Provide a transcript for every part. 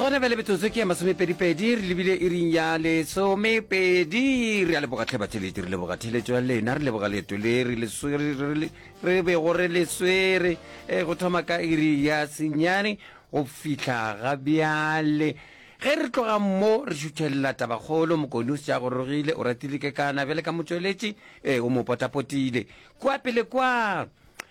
gona bjale metsotso ke ya masomepedipedi re lebile e ring ya lesomepedi re a leboga tlhebatheledi re leboga theletso ya lena re leboga leeto le re le swere- re le- re bego re le swere um go thoma ka iri ya senyane go fihla ga bjale ge re tloga mo re šuthelela tabakgolo mokone o sja gorogile o ratile kekana bjale ka motšweletši um o mo potapotile kwa pele kwa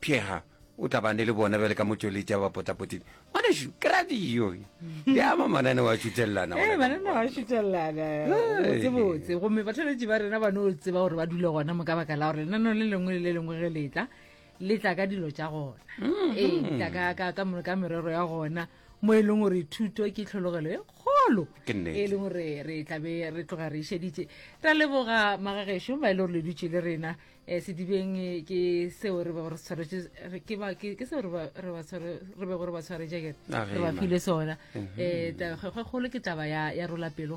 Pheega o tabane le bona bjale ka motšweletši a ba potapotile ngwanešu ke ra diyo di ama mananeo a šuthelelana ee mananeo a šuthelelana botsebotse gomme batholetši ba rena ba no tseba gore ba dule gona mo ka baka la gore lenaneo le lengwe le le lengwe ge letla le tla ka dilo tša gona mm-hmm. ee tla ka merero ya gona mo e leng gore thuto ke tlhologelo e kgolo e leng gore re tlabe re tloga re išeditše ra leboga magageso ba e le gore le dutše le rena um sedibeng ke seo re bego re tshwaretše ke seo re bego re ba tshwaretše kere re ba file sona um tabakgolo ke taba ya rola pelo